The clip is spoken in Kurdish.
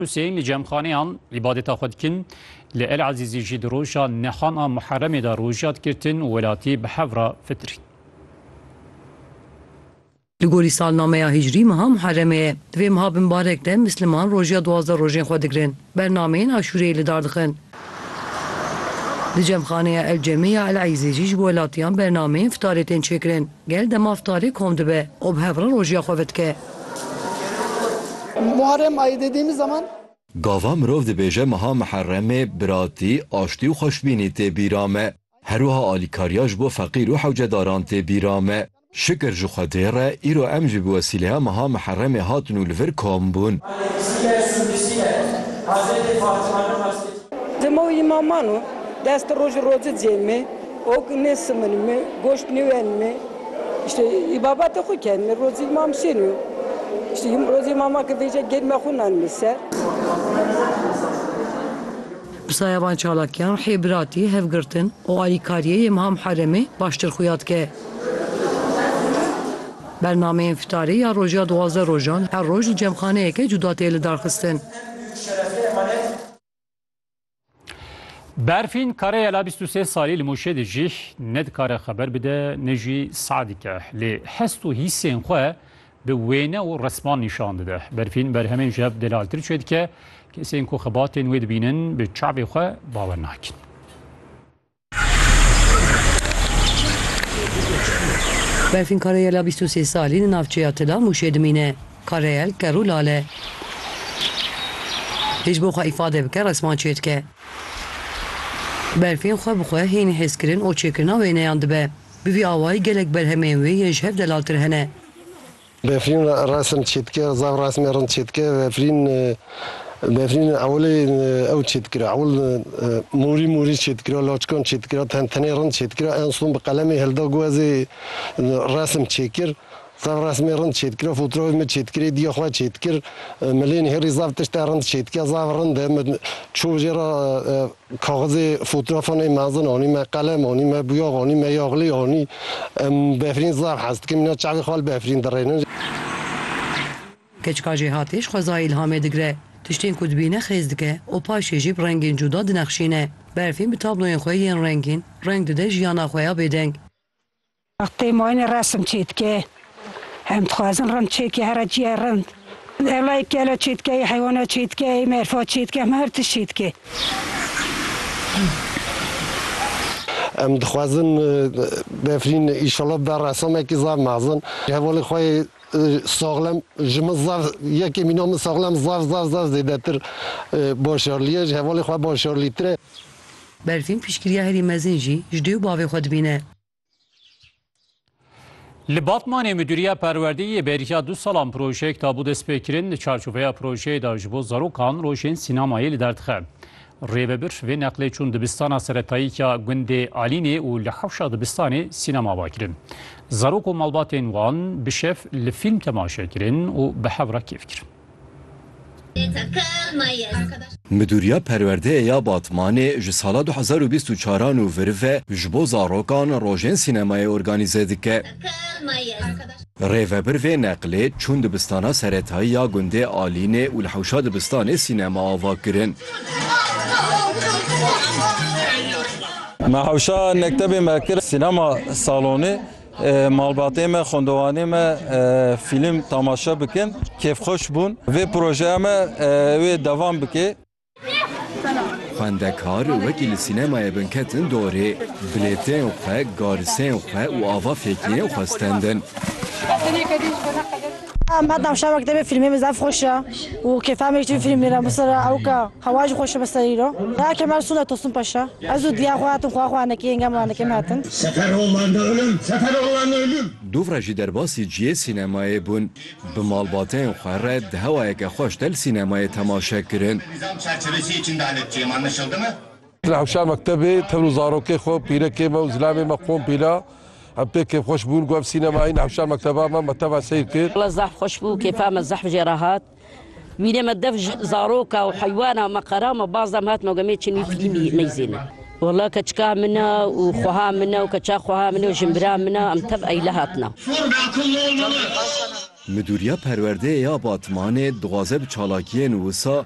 Huseyîn li cemxaneyan îbadeta xwe dikin. Li El Ezîzî jî di roja nihan a Muheremê de roja dikirtin û welatî bi hev re fitirîn. Li gorî salnameya hîcrî meha Muheremê ye. Di vê meha bi mbarek de misliman roja duwazdeh rojên xwe digirin. Bernameyên aşûreyê li dar dixin. Di cemxaneya El Cemê ya El Ezîzî jî ji bo welatiyan bernameyên fitarê tên çêkirin. Gel dema iftarê kom dibe û bi hev re rojiya xwe vidike. Gava mirov dibêje meha Miherremê biratî, aştî û xweşbînî tê bîra me. Her wiha alîkariya ji bo feqîr û hewcedaran tê bîra me. Şikir ji Xwedê re îro em jî bi wesîleya meha Miherremê hatin û li vir kom bûn. Dema wî maman o dest roj û roci cêmê. Ok nêsimin mi, goşt nêwen mi. Îşte î babetê xo ken mi rozî mam şên û îşte î rozî mama ke vêje gênme xo nan mi ser. Pirsaya van çalakiyan hê biratî, hevgirtin û alîkariyê yê Miha Muheremê baştir xuya dike. Bernameyên fitarê ya rojê ya duwazdeh rojan her roj li cemxaneyeke cuda tê lidarxistin. Berfîn kare yela bîst û sê salî li Mûşê dijî, ne dikare xeber bide ne jî sah dike. Lê hest û hîsên xwe bi wêne û resman nîşan dide. Berfîn berhemên ji hev delaltir çêdike, kesên ku xebatên wê dibînin bi çavê xwe bawer nakin. Berfîn Karayela bîst û sê salî li navçeya Tila Mûşê dimîne. Karayel ker û lal e. Hê ji bo xwe îfade bike resman çêdike. Berfîn xwe bi xwe hînî hêzkirin û çêkirina wêneyan dibe. Bi vî awayî gelek berhemên wê yên ji hev delaltir hene. Befrîn resim çêdike, zaf resmê rind çêdike. Befrîn befrîn ewilê ew çêdikira. Ewil morî morî çêdikira, laçikan çêdikira, ten tenê rind çêdikira. En son bi qelemê hilda ku ez ê resim çêkir. Zaf resmê rind çêdikira, fotoğrafê min çêdikirê diya xwe çêdikir. Milên hêrî zaf tişte rind çêdike, zaf rind e. Min çû jê re Kaxizê fotoğrafan ê mezin anî me qelem anî me bûyax anî me yaxlê anî em befrîn zaf hez dikim îna çavê xwe li befrîn dirênin. Keçika jêhatî ji xwezayê îlhamê digre. Tiştên ku dibîne xêz dike û paşê jî bi rengên cuda dinexşîne. Berfîn bi tabloyên xwe yên rengîn reng dide jiyana xwe ya bêdeng. Wextê mayînê resim çêdike. Em dixwazin rind çêdike here çîya rind. Ewleyî kela çêdike, yê heywana çêdike, yê merfa çêdike, heme her tişt çêdike. Em dixwazin Befrîn îşallah bida ressamekî zaf mezin. Hevalê xwe yê saxlem ji min zaf yekê mîna min saxlem zaf zaf zaf zêdetir başarlîye. Ji hevalê xwe başarlîtir e. Berfîn piştgiriya herî mezin jî ji dê û bavê xwe dibîne. Li Batmanê Midûriya Perwerdeyî yê bêriya du salan projeyek dabû destpêkirin li çarçoveya projeyê de ji bo zarokan rojên sînemayê li derdixe. Rêvebir vê neqlê çûn dibistana seretayî ya gundê Alînê û li hewşa dibistanê sînema ava kirin. Zarok û malbatên wan bi şev li fîlm temaşe kirin û bi hev re kêf kirin. Midûriya Perwerdeyê ya Batmanê ji sala du hezar û bîst û çar a nû vir ve ji bo zarokan rojên sînemayê organîze dike. Rêvebir vê neqlê çûn dibistana seretayî ya gundê Alînê û li hewşa dibistanê sînema ava kirin. Me hewşa mektebê me kir sînema salonê. Malbatê me, xwendewanê me fîlm temaşe bikin. Kêfxweş bûn. Vê projeya me wê devam bike. Xwendekar wekî li sînemayê bin ketin dorê. Bilêteyên xwe, gariseyên xwe û ava fêkiyên xwe stendin. Me temaşe wekî te vê fîlmê min zaf xweş e û kêfa me jî tevî fîlmê re. Misal re ewka. Hewa jî xweş e bi ser îro. Raya Kemal Sunat Tosun Paşa, Ez û diya xwe hatin xweha xwe anekê yengem û anekê min hatin. Seferoğlan ölüm, Seferoğlan ölüm. Dûvra jî derbasî ciyê sînemayê bûn. Bi malbateyên xwe re di hewayeke xweş de li sînemayê temaşe kirin. Nizam çerçevesiyê içinde halek çi anlaşıldı mı? Li hewşa mektebê tev û zarokê xwe, pîrekê me û zilamê me qom pîla. Em pê kêfxweş bûn ku ev sînemayî li hewşa mekteba me me teva seyr kir. Wela zehf xweş bû, kêfa me zehf jê re hat. Mînê me dev ji zaroka û heywana me qera me baz da me hat me got me çin wî fîlîmî neyzêne. Walla keçika min e û xweha min e û keça xweha min e û jinbira min e em tev eyle hatine. Midûriya Perwerdeyê ya Batmanê dixwaze bi çalakiyên wisa